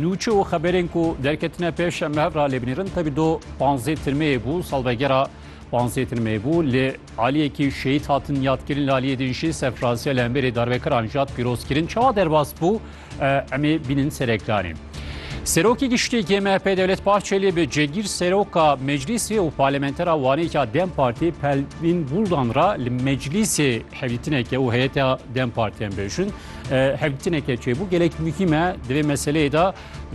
Nûçe û xeberên ku derketine pêş em li hev re lê binêrin. Tevî do panzdeh tirmeyê bû, salvegera panzdeh tirmeyê bû. Li aliyekî şehîd hatin yadkirin, li aliyê din jî serfiraziya li hemberî darvekiran jad pîroz kirin. Çawa derbas bû em ê bînin serekdanê. Serokê Giştî yê MHP Dewlet Bahçelî bi cegîr seroka meclîsê û parlamentera wanêka dem Partî Pelvîn Buldan re li meclîsê hevdîtineke û heyeta dem Partî em bêjin. hevdîtineke çêbû gelek muhîm e di vê meseleyê de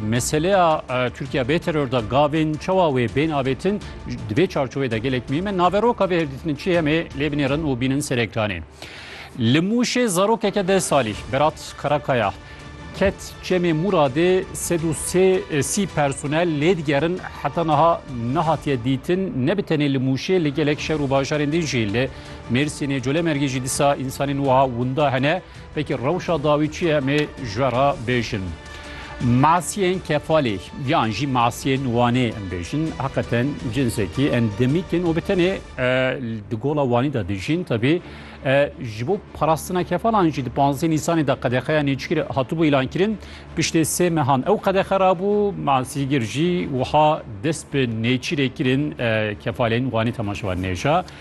meseleya Tirkiya bê teror da gavên çawa wê bên avêtin di vê çarçovê de gelek muhîm e naveroka vê hevdîtinê çi hemê lê binêrin û bînin ser ekranê. Li Mûşê zarokeke de salî Berat Karakaya ket çemê Muradê sed û sê sî personel lê digerin heta niha nehatiye dîtin ne bi tenê li Mûşê li gelek şer û bajarên din jî li Mêrsînê Colemêrgê jî dîsa însanên wiha winda hene. Peki rewşa dawî çi ye mê ji we re bêjin. Masiyên kefalê yan jî masiyên wanê em bêjin heqeten cinsekî endemîk in û bi tenê di gola wanî de dijîn tebî ji bo parastina kefalan jî di panzdeh nîsanê de qedexeya nêçikir hatibû îlankirin piştê sê mehan ew qedexe rabû masîgir jî wiha dest bi nêçîrê kirin kefalên wanî temaşevan nêja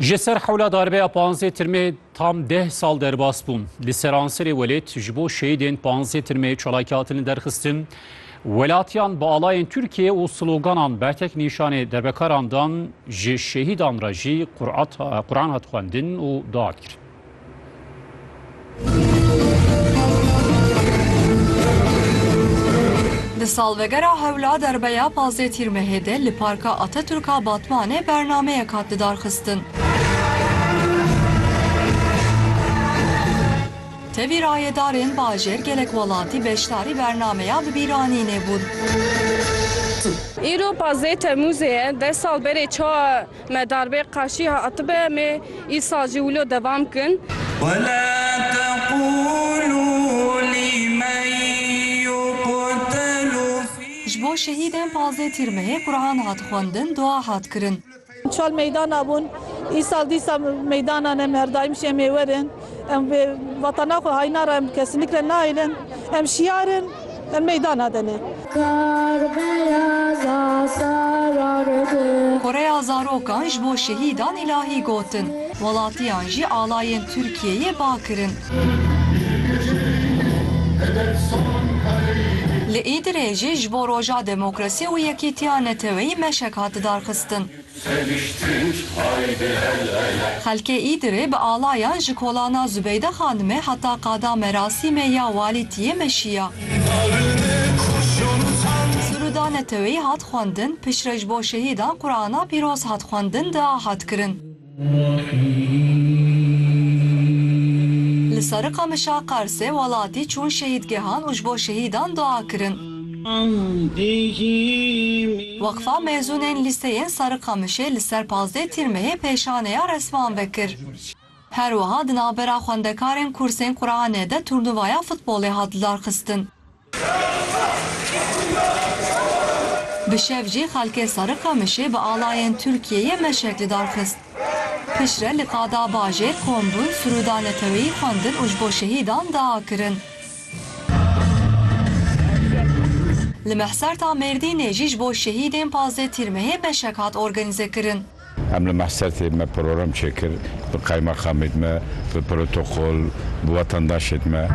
Ji ser hewla darbeya panzê tirmê tam deh sal derbas bûn. Li seranserê welêt ji bo şehîdên panzê tirmê çalakî hatin li derxistin. Welatiyan bi alayên Tirkiyê û sloganan bertek nîşanê derbekaran dan ji şehîdan re jî Quran hat xwendin û dua hat kirin. Di salvegera hewla derbeya pazdeh Tîrmehê de li Parka Atatürk a Batmanê bernameyek hat lidarxistin. Tevî rayedarên bajêr gelek welatî beşdarî bernameya bi bîranînê bûn. Îro pazdeh Temûzê ye, deh sal berê çawa Me darbê qaşî hatibe mê îsa jî wilo devam kin. Ji bo şehîdên pazdeh Tîrmehê Quran hat xwendin, dua hat kirin. Çal meydana bûn. Îsal dîsa meydanan em her daîm şemê werin. Em bi vatana xwe hayna re em bi kesînik re nahêlin. Em şiyar in. Em meydana de ne. Kar beyaza sarardı. Koreya zarokan ji bo şehîdan îlahî gotin. Welatiyan jî alayên Tirkiyeyê ba kirin. Li Îdirê jî ji bo Roja Demokrasî û Yekîtiya Neteweyî meşek hat darxistin. Xelkê Îdirê bi alayan ji kolana Zubeyde Xanimê heta qada merasîmê ya Walîtiyê meşiya. Siruda Neteweyî hat xwendin, piştre ji bo şehîdan Qurana Pîroz hat xwendin, dua hat kirin. Li ser Qamişa Qersê welatî çûn şehîdgehan û ji bo şehîdan dua kirin. Weqfa Mezûnên Lîseyên Serikamişê li ser pazdeh Tîrmehê pêşaneya resman vekir. Her wiha di navbera xwendekarên kursên Quranê de turnuvaya futbolê hat lidarxistin. Bi şev jî xelkê Serikamişê bi alayên Tirkiyeyê meşek lidarxist. Piştre li qada bajêr kombûn, sirûda neteweyî xwendin û ji bo şehîdan dua kirin. Li Mehserta Mêrdînê jî ji bo şehîdên pazdeh tîrmehê beşek hat organîzekirin. Em li Mehsertê me program çêkir bi qaymaxamê me, bi protokol, bi wetandaşên me.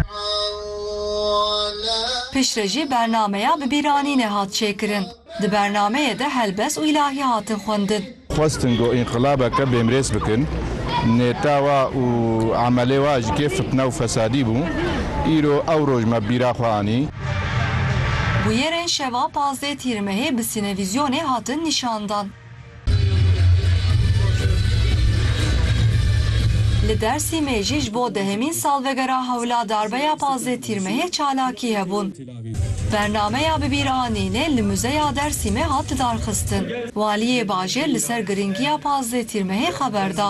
Piştre jî bernameya bibîranînê hat çêkirin. Di bernameyê de helbest û îlahî hatin xwendin. Xwestin ku înqilabeke bêmrêz bikin. Nêta wa û emelê wa ji kê fitne û fesadî bû. Îro ew roj me bîra xwe anî. Bûyerên şeva pazdeh Tîr Mehê bi sînevizyonê hatin nîşandan. Li Dêrsîmê jî ji bo dehemîn salvegera hewla darbeya pazdeh Tîrmehê çalakî hebûn. Bernameya Bi bîr anînê li Muzeya Dêrsîmê hat lidarxistin. Waliyê bajêr li ser girîngiya pazdeh Tîrmehê xeber da.